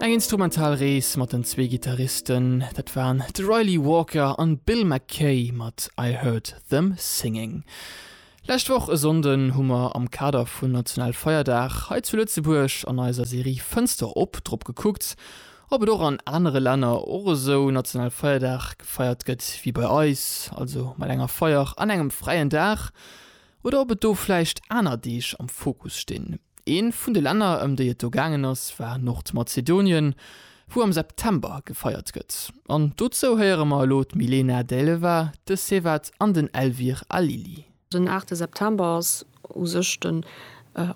Eng instrumental Rees mat den zwee Gittaristen, dat waren de Ryley Walker an Bill McKay mat I Heard Them Singing. Lescht Woch e Sonnden hu mer am Kader vun National Feierdag hei zu Lëtzebuerg an eiser Serie Fënster op drop gekuckt, ob et och an anere Länner och esou National Feierdag gefeiert gëtt wéi bei eis, also mat enger Feier an engem fräien Dag, oder ob et do vläicht aner Deeg am Fokus stinn. Eent vun de Länner, ëm déi et do gaangen ass, war Nordmazedonien, wou am September gefeiert gëtt. An dozou héiere mer elo d'Milena Dejleva, de Sevat an den Elvir Alili. Den aachte September ass u sech den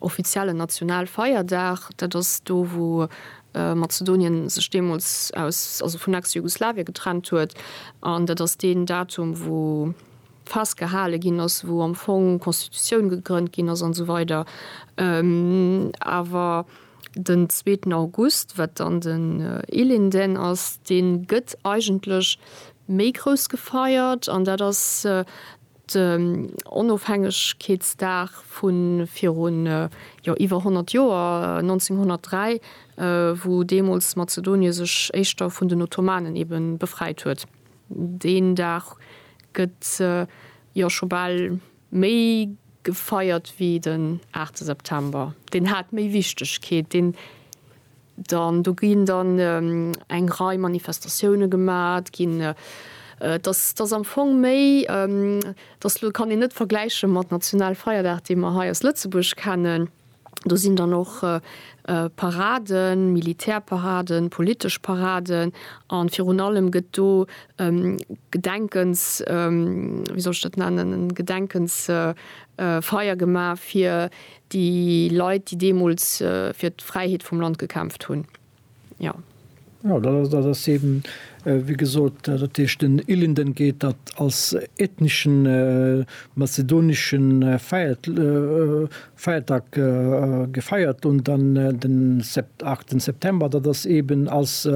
offiziellen Nationalfeierdag. Dat ass do, wou Mazedonien sech deemools aus, also vun Ex-Jugoslawien getrennt huet. An dat ass deen Datum, wou festgehale ginn ass, wou am Fong d'Constitutioun gegrënnt ginn ass an esou weider, awer den zweeten August, wat dann den Ilinden ass, dee gëtt eigentlech méi grouss gefeiert an dat ass den Onofhängegkeetsdag vu virun, jo iwwer 100 Joer, 1903, wou deemools Mazedonie sech éischter vun den Ottomanen ebe befreit huet. Deen Dag gëtt jo scho bal méi gefeiert wéi den 8 September. Deen hat méi Wichtegkeet. Deen dann, do ginn dann eng Rei Manifestatioune gemat ginn. Et ass, et ass am Fong méi, et ass, elo kann een net vergläiche mat Nationalfeierdag, dee mer hei aus Lëtzebuerg kennen. Do sinn dann och Paraden, Militärparaden, politesch Paraden a virun allem gëtt do e Gedenkens, wéi soll ech dat nennen, e Gedenkensfeier gemaach fir déi Leit, déi deemools fir d'Fräiheet vum Land gekämpft hunn. Jo. Jo, dat ass, dat ass eben, wéi gesot, dat heescht den Ilinden geet dat als ethneschen mazedonesche Feiert, Feiertag gefeiert un, dann den Sept, 8 September, dat ass eben als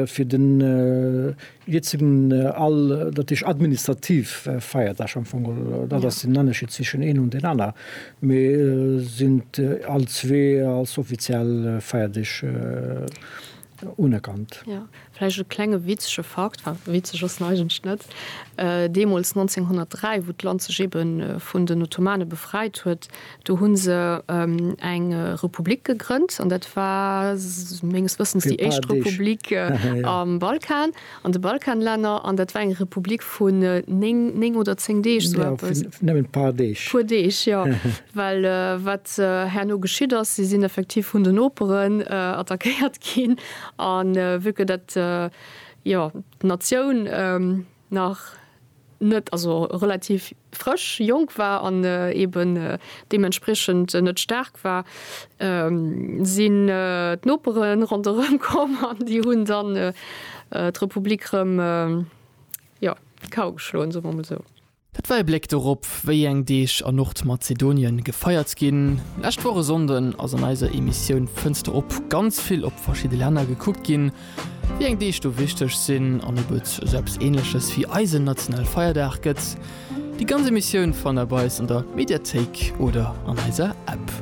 fir den, Hiert sinn all, dat heescht administrativ Feierdag am Fong, dat ass den Ennerscheed zwischen een an den aner, mee sinn all zwee als offiziell Feierdeeg unerkannt. Jo, vläicht e klenge witzege Fakt, enfin witzeg ass en eigentlech net, deemools 1903, wou d'Land sech eebe vun den Ottomane befreit huet, Do hunn se eng Republik gegrënnt an dat war menges Wëssens déi éischt Republik am Balkan, an de Balkanlänner, an dat war eng Republik vun néng, néng oder zéng Deeg, sou eppes. Jo, vun nëmmen e puer Deeg. Puer Deeg, jo. Well wat herno geschitt ass, si sinn effektiv vun den Noperen attackéiert ginn, a vu que dat, jo, d'Natioun, nach net, also relativ frësch, jonk war an eben deementspriechend net staark war, sinn d'Nopere ronderëm komm an déi hunn dann d'Republik erëm, jo, d'Kau geschloen, soe mer emol esou. Dat war e Bléck dorop, wéi eng Deeg a Nordmazedonien gefeiert ginn. Lescht Woch e Sonnden ass an eiser Emissioun Fënster op ganz vill op verschidde Länner gekuckt ginn. Wéi eng Deeg do wichteg sinn an ob et esou eppes Ähnleches wéi eisen nationale Feierdag gëtt? Déi ganz Emissioun fannt der bei eis an der Mediathéik oder an eiser App.